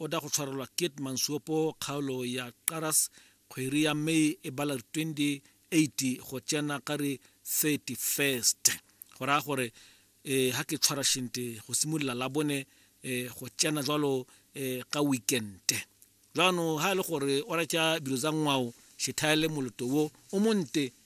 O tla go tshwarelwa Keet Mansuopo kgaolo ya Qaras kgweri ya May e bala re 28 go tsena ka re 31st go raya gore eh ha ke tshwara shente go simolola la bone eh go tsena jwalo eh ka weekend jwano ha e le gore o ratša dilo tsa ngwao šethaele moloto wo o monte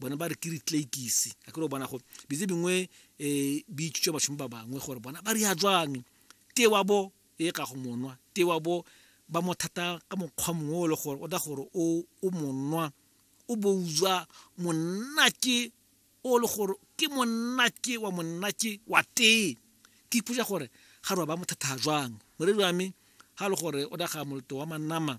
bona ba re ke ritleikise a kere o bona go bitse bingwe um bi itsutsa bašomi ba bangwe gore bona ba ria jwang te wa bo e ka go monwa te wa bo ba mo thata ka mokgwa mongwe o le gore o da gore o o monwa o bo uzwa monna ke o le gore ke monna ke wa monna ke wa tee ke ipotsa gore ga re ba mo thata jwang moredi wa me ga le gore o da ga moloto wa manama